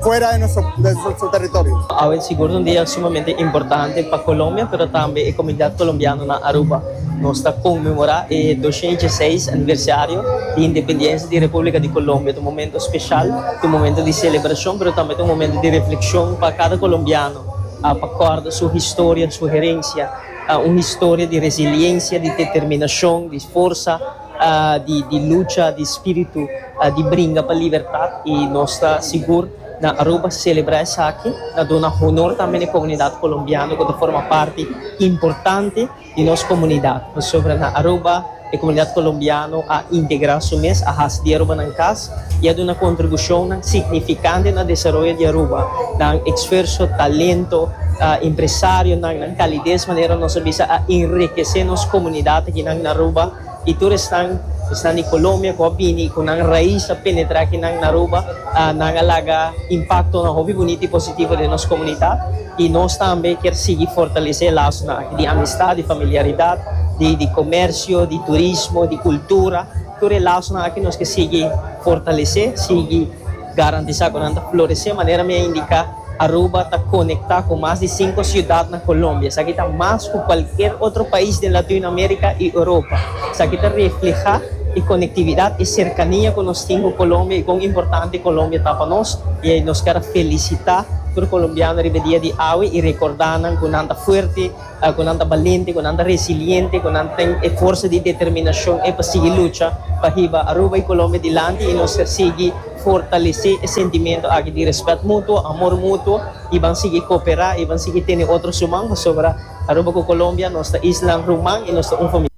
fuera di nos territorio. Awe sigur un dia sumamente importante pa Colombia pero tambe e comunidad colombiano na Aruba. Nos ta conmemora e doscientos y dieciseis aniversario di independencia di Republica di Colombia. Ta un momento special, ta un momento di celebracion pero tambe ta un momento di reflexion pa cada colombiano pa corda su historia, su herencia, un historia di resiliencia, di determinacion, di forsa. di lucha, di spiritu di bringa pa libertat y nos ta sigur na Aruba celebra esaki na duna honor tambe na e comunidad colombiano cu ta forma parti importante di nos comunidad, pasobra na Aruba e comunidad colombiano a integra su mes, a haci di Arubanan cas. I a duna kontribushonnan signifikante na desaroyo di Aruba, nan eksferso, talento, empresarionan, nan kalides, manera nos a bisa, a enrikesé nos komunidat akinan na Aruba. I tur esnan, esnan di Kolombia ku a bini, ku nan rais a penetrá akinan na Aruba, nan a laga impaktonan hopi bunita i positivo den nos komunidat. I nos tambe kier sigui fortalesé e lasonan aki di amistad, di familiaridat, di komèrsio, di turismo, di kultura. Tur e lasonan aki nos ke sigui fortalesé, sigui garantisá ku nan ta floresé. Manera mi a indiká, Aruba ta konektá ku mas di sinku siudat na Kolombia. Esaki ta mas ku kualker otro pais den Latinoamerika i Europa. Esaki ta reflehá e konektividat, e serkania ku nos tin ku Kolombia i kon importante Kolombia ta pa nos. I nos ker a felisitá tur kolombiano riba e dia di awe i rekordá nan ku nan ta fuerte. Ku nan ta balente, ku nan ta resiliente, ku nan tin e forsa di determinashon ei pa sigui lucha pa hiba Aruba i Colombia dilanti i nos ta sigui fortalesé e sentimentu aki di rèspèt mutuo, amor mutuo i ban sigui koperá i ban sigui tene otro suman pasobra Aruba ku Colombia nos ta islan ruman i nos ta un famia.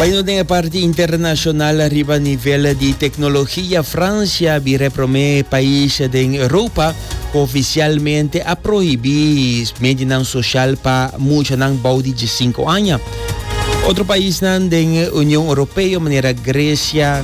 Bai nos den e parti internashonal riba nivel di teknologia. Fransia bira e promé pais den Europa ku ofisialmente a prohibí medianan soshal pa muchanan bou di dje sinku aña. Otro paisnan den Union Europeo manera Gresia,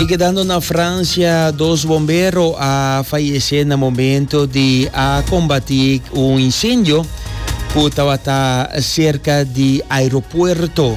I kedando na Francia, dos bombero a fayesé na momento di a kombatí un insendio ku tabata serka di aeropuerto.